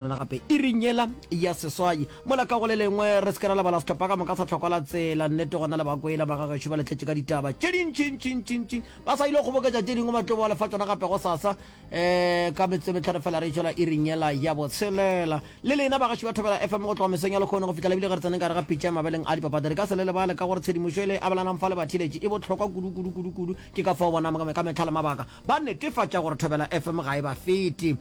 Rena gape iring yela ya seswai mola ka go le lengwe re se ke ra lebala setlhopha ka moka sa tlhokwa la tsela nnete gona le bakwela magagešo ba letletše ka ditaba tše dintšintšintšintšing ba sa ile go kgoboketša tše dingwe ba tlo boa lefa tsona gape go sasa um ka metse metlhano fela re tšwela iring yela ya botshelela le lena bagaši ba thobela fm go tloga mesong ya lekgono go fihla lebile ge re tseneng ka re ga pitša ya mabeleng a dipapadi re ka se le lebale ka gore tshedimošo e le abelanang fa le bathiletše e bohlokwa kudu kudu kudu kudu ke ka fao bonang ka mehla le mabaka Ba netefatša gore Thobela FM ga e ba fete.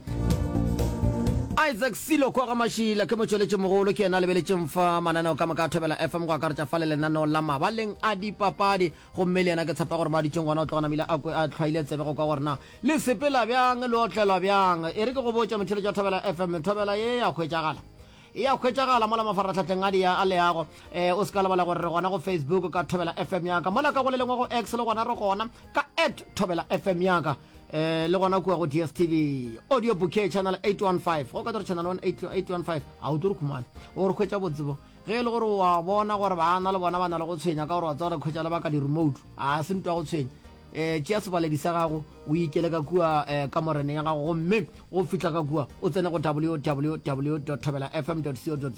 Isaac Silo Kgogamashila, Ke motšweletšimogolo, ke yena a lebeletšeng fa mananeo ka moka a Thobela FM, go akaretša fa le lenaneo la mabaleng a dipapadi. Gomme le yena ke tshepa gore mo a dutšeng gona o tloga namile a kwe a tlhwaile tsebe go kwa gore na le sepela bjang, le otlelwa bjang. E re ke go botše, motheeletši wa Thobela FM, Thobela ye ya hwetšagala? E a hwetšagala mola mafarahlahleng a dia a leago. E, o se ka lebala gore re gona go Facebook ka Thobela FM ya ka. Mola ka go le lengwe go X le gona re gona ka at Thobela FM ya ka. E, le gona kua go DSTV. Audio Bouquet Channel 815. Go ka tore Channel 815. Ha o tlo re khumana. O re hwetša botsebo. Ge e le gore o a bona gore baana le bona ba na le go tshwenya ka gore wa tseba re khwetša le ba ka di-remote. A se ntwa go tshwenya. um tšea sebaledi sa gago o ikele ka kua um ka morene ya gago gomme go fihla ka kua o tsene go www thobela fm co za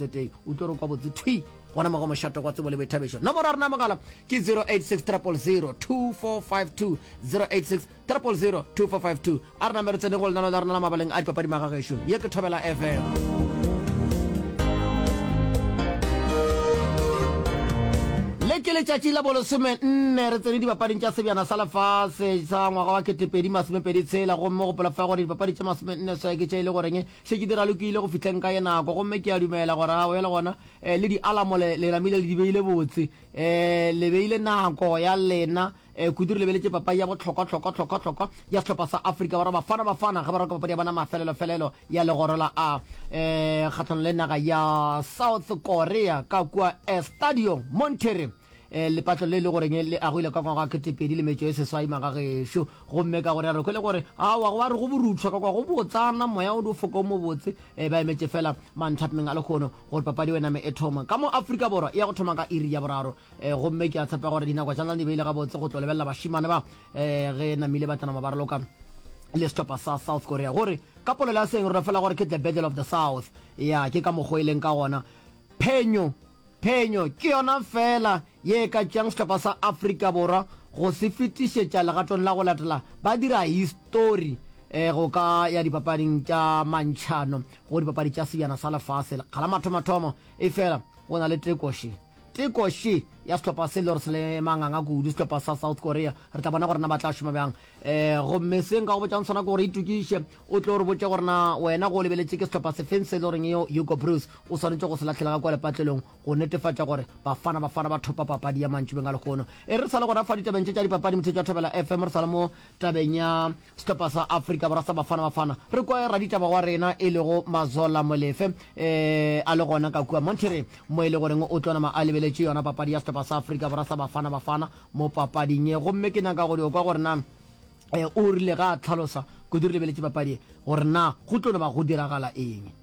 o tlo re kwa botse thwi gona mo go mošato kwa tsebo le boithabišo nomoro ya rena mogala ke 086 000 2452 086 000 2452 A re name re tsene go lenano la rena la mabaleng a dipapadi magagešo. Ye ke Thobela FM. Le ke letšatši la bolesome nne re tsene dipapading tša sebjana sa lefase sa ngwaga wa ketepedi masomepedi tshela gomme go polofa gore dipapadi tša masome nne swae ke tše e le goreng šetše di ralokile go fihleng ka ye nako gomme ke a dumela gore ga bjale gona eh, le dialamo le namile le di beile botse eh, le beile nako ya lena Eh, kudu re lebeletše papai ya bohlokwahlokwahlokwahlokwa ya sehlopha sa afrika borwa bafana bafana ge ba roka papadi ya bona mafelelofelelo ya legoro la a eh, kgatlhano le naga ya south korea ka kua estadio montere eh, lepatlo le le goreng le agwile ka ngwaga ketepedi le metšo e seswai magagešo gomme ka gore rekwe le gore awa go ba re go boruthwa ka kwa go botsana moya o di foko o mobotse eh, ba emetše fela manthapmeng a lekgono gore papadi o ename e thoma ka mo afrika borwa e ya go thoma ka iri ya boraro um gomme ke a tshepa gore dinako tša lena di beile gabotse go tlo lebelela bašimane ba um ge namile ba tsanama ba raloka le setlhopha sa south korea gore ka polelo ya seng rona fela gore ke the battle of the south ya ke ka mokgwa e leng ka gona phenyo phenyo ke yona fela ye e ka tšeang setlhopha sa afrika borwa go se fetišetša legatong la go latela ba dira histori um go ka ya dipapading tša mantšhano go dipapadi tša sebjana sa lefase kgala mathomathomo e fela go na le tekoše Tekoši ya sehlopha se le gore se le manganga kudu, sehlopha sa South Korea. Re tla bona gore na ba tla šoma bjang. Um gomme se nka go botšang sona ke gore itokiše o tlo re botše gore na wena go o lebeletše ke sehlopha sefeng se e le goreng yo Hugo Broos o swanetše go se latlhela ga kua lepatlelong go netefatša gore Bafana Bafana ba thopa papadi ya mantšubeng a lehono. E re re sa le gona fa ditabeng tše tša dipapadi, mothetšo wa Thobela FM, re sa le mo tabeng ya Sehlopha sa Afrika Borwa sa Bafana Bafana re kwe raditaba wa rena e lego Mazola Molefe e a le gona ka kua Monterrey mo e le goreng o tlonama a lebeletše yona papadi ya sehlopha sa Afrika Borwa sa Bafana Bafana mo papading ye gomme ke nyaka go dio kwa gore na e o rile ga a tlhalosa kudu re lebeletše papadi ye gore na go tlo no ba go diragala eng.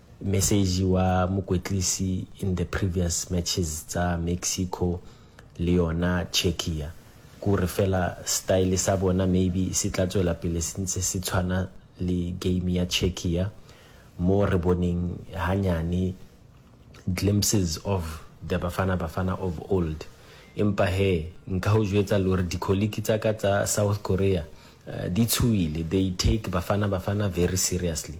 Mesegi wa mokwetlisi in the previous matches tsa Mexico le yona Czechia kore fela style sa bona maybe se tla tswela pele se ntse se tshwana le game ya Czechia mo re boneng hanyane glimpses of the Bafana Bafana of old. Empa hee nka ho jwetsa lore di colleague tsa ka tsa South Korea di tshohile, they take Bafana Bafana very seriously.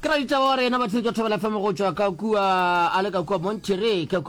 ke ra ditaba wa rena ba tshwetso thobela fm go tšwa ka kua a le ka kua monterey ka kua